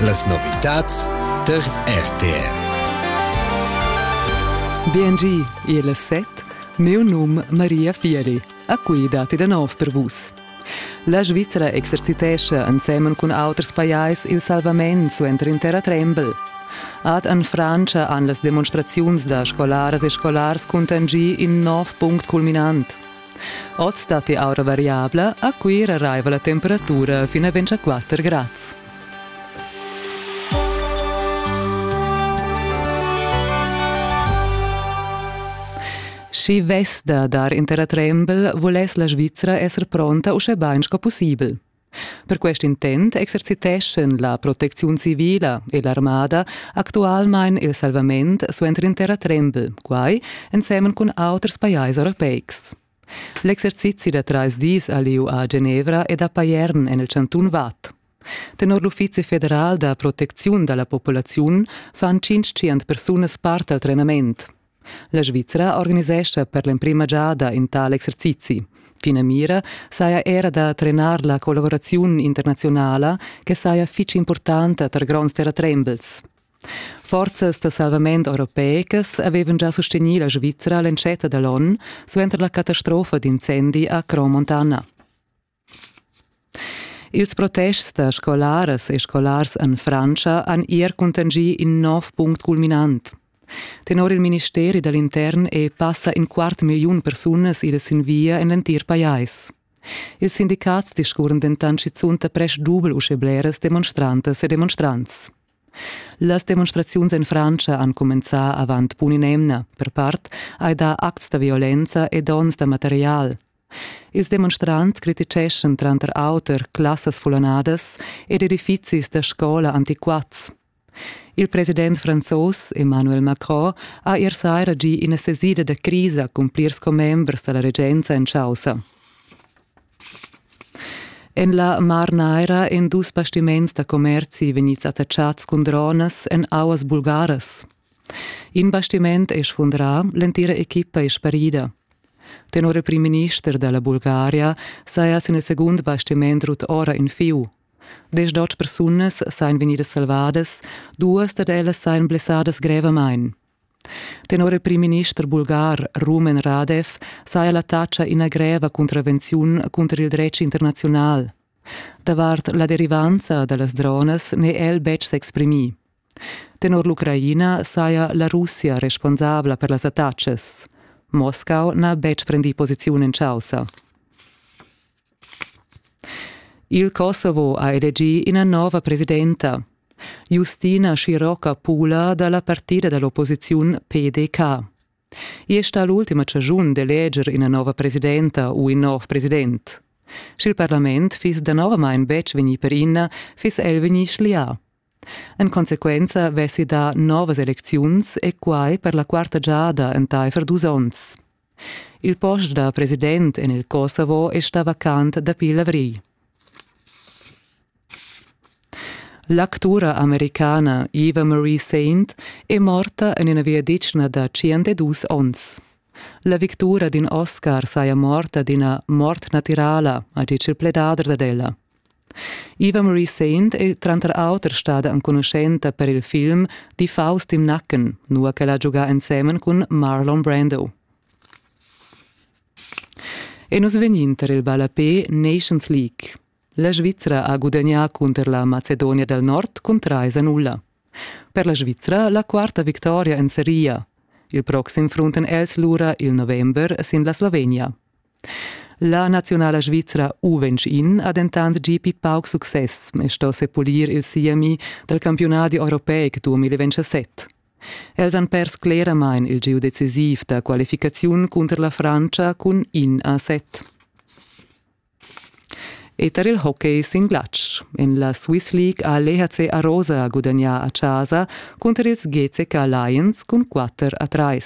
Las novitads tar RTR. Biengi, il set, meu num Maria Fieri. A qui dati da nov per vus. La Svizzera exercitescha ensemen cun auters pajais il salvament suenter in terra trembel. Ad an Francia han las demonstraziuns da scolaras e scolars contangì in nov punct culminant. Oz datti aura variabla, a Cuira raiva la temperatura fin a 24 grads. Schi vess da dar in terratrembel, vuless la Svizra esser pronta uschè bain sco pussibel. Per quest intent exerciteschan la protecziun civila e l'armada actualmein il salvament suenter intera trembel, quai ensemen cun auters pajais europeics. L'exercizi da trais dis a lieu a Genevra ed a Payern en il cantun Vad. Tenor l'Uffizi federal da protecziun da la populaziun fan 500 persunas part al trenament. La Svizra organisescha per l'emprima giada in tal exercizi. Finamira saja era da trenar la collaboraziun internazionala che saja fitg importanta tar gronds terratrembels. Forzas da salvament europeicas avevan già sostegnì la Svizra l'entschatta da l'onn suenter la catastrofa d'incendi a Cromontana. Ils protests da scolaras e scolars en Frantscha han er cuntanschì in nov punct culminant. Tenor il ministeri da l'intern è passa in quart milliun persunas idas sin via en l'entir pajais. Ils sindicats discurren dentant schizunt da prest dubel uschè bleras demonstrantas e demonstrants. Las demonstraziuns en Frantscha han cumenzà avant pun in'emna. Per part hai dà acts da violenza e donns da material. Ils demonstrants criticheschan tranter auter classas fulonadas ed edifizis da scola antiquats. Il president franzos Emmanuel Macron ha ier saira gì ina sesida da crisa cun plirs commembers da la regenza en chaussa. En la Mar Naira èn dus bastiments da commerzi vegnids attaccads cun dronas en auas bulgaras. In bastiment è sfundrà, l'entira equipa è sparida. Tenor il primminister da la Bulgaria saja sin il segund bastiment rut ora in fieu. Deschdotg persunas sajan vegnidas salvadas, duas dad ellas sajan blessadas grevamain. Tenor il primminister bulgar Rumen Radev saja l'attacca ina greva contravenziun cunter il dretg internaziunal. Davart la derivanza da las dronas n'è el betg s'exprimì. Tenor l'Ucraina saja la Russia responsabla per las attacas. Moscau n'ha betg prendì posiziun en chaussa. Il Kosovo ha elegì ina nova presidenta. Justina Scirocca-Pula da la partida da l'opposiziun PDK. I è stà l'ultima chaschun d'eleger ina nova presidenta u in nov president. Sch'il parlament fiss danovamain betg vegnì per ina, fiss el vegnì schlià. En consequenza vessi dà novas elecziuns e quai per la quarta giada entaifer dus onns. Il post da president en il Kosovo è stà vacant dapi l'avrigl. L'actura americana Eva Marie Saint è morta en ina viaditschna da 102 onns. La victura d'in Oscar saja morta d'ina mort natirala, ha ditg il pledader dad ella. Eva Marie Saint è tranter auter stada enconuschenta per il film Die Faust im Nacken, nua ch'ella ha giugà ensemen cun Marlon Brando. E nus vegnin tar il ballapé Nations League. La Svizra ha gudagnà cunter la Macedonia del Nord cun 3-0. Per la Svizra la quarta victoria en seria. Il proxim frunten els lura il november sin la Slovenia. La naziunala svizra U21 ha dentant gì pli pauc success e sto sepulir il siemi dal campiunadi europeic 2027. Els han pers cleramain il gieu decisiv da qualificaziun cunter la Frantscha cun in a set. E tar il hockey sin glatsch. En la Swiss League ha l'EHC Arosa gudagnà a Chasa cunter ils GCK Lions cun 4 a 3.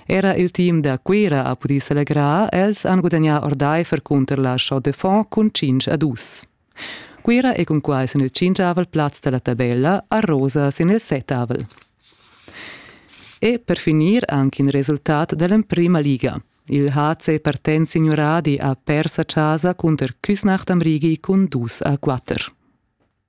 Era il team da Cuira ha pudì selegrar. Els han gudagnà ordaifer cunter la Chaux de Fonds cun 5 a 2. Cuira è cunquai sin il cincavel plaz da la tabella a rosa sin il settavel. E per finir anche in resultat dell'emprima liga. Il HC Partenz Signuradi ha pers a casa cunter Küsnacht am Rigi cun 2 a 4.